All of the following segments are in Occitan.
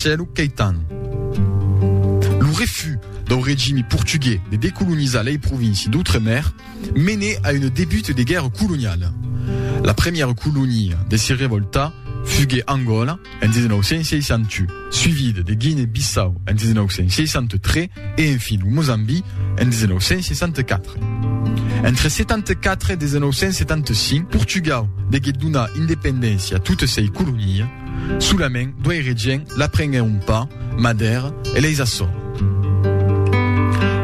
Cèlu Caetano. Lo refús dau regimi portugués de decolonizar lei provinci d'Outremer mené a una debut de guèrra coloniala. La premiera colonia de se revoltar fugué Angola en 1961, suivida de Guinea-Bissau en 1963 e enfin lo Mozambi en 1964. Entre 74 e 1975, Portugau degué donar independéncia a totes sei colonias. Solament duei regien la prenguèn un pas ma d'èra e leis açò.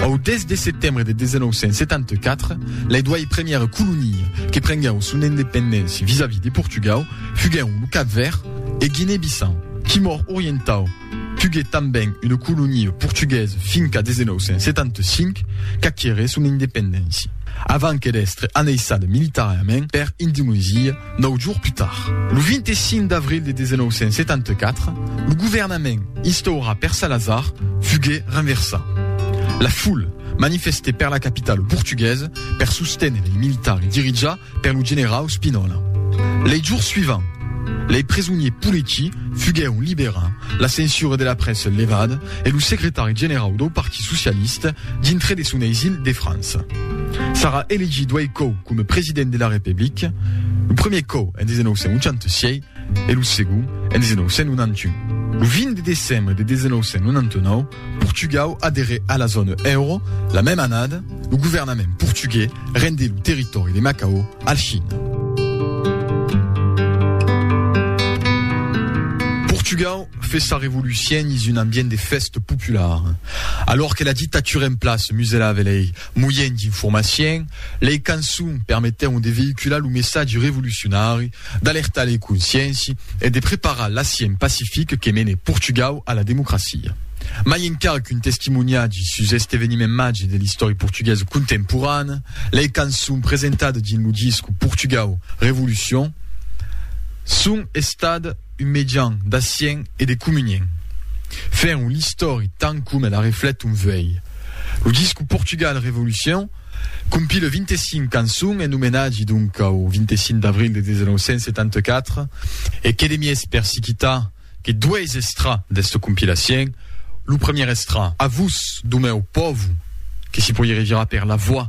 Au 10 de setembre de 1974, lei duei première colonia que prenguèu son independéncia vis-a-vis de Portugau fuguèun lo Cap Verd e Guinée-Bissau. Timor Orientau tugué tanben una colonia portuguesa fin qu'a 1975 qu'aqueré son independéncia, avant que d'èstre anneissada militarament per Indonesia, Nòu jours plus tard, lo 25 d'avril de 1974, lo governament instaurat per Salazar fugué renversat. La foule manifesté per la capitala portuguesa per susténer lei militari dirijat per lo generau Spinola. Lei jours suivants, lei presoniers politici fuguèron liberats, la censura de la prèssa levada, e lo secretari generau dau Partit Socialista dintre de son eisil de França. Sarà elegit doei còu coma president de la Republica, lo premier còu en 1986 e lo segond en 1991. Lo 20 de decembre de 1999, Portugau aderè a la zòna euro, la mèma annada, lo governament portugués rendé lo territòri de Macao a la China. Portugau. Fe sa revolucion dins un ambient de fèsta popular. Alòr que la dictatura en plaça muselave lei moiens d'informacion, lei cançons permetèron de veïcular lo messatge revolucionari, d'alertar lei conscienci e de preparar l'assient pacific que mene Portugau a la democracia. Mai encara qu'un testimoniatge sus este eveniment màger de l'istòria portuguesa contemporana, lei cançons presentadas dins lo disc Portugau, Revolucion son estadas, un mejan d'acien e de comunien. Fèr un l'istòri tant coma la reflet un vuei. Lo disco Portugal Revolucion compila 25 cançons en omenatge donc au 25 d'avril de 1974 e que de mies per si quitar que dois estrà d'esta compilacien, lo premier estrà A vos, Domèu Pòvu, que si poirie revirar per la voix.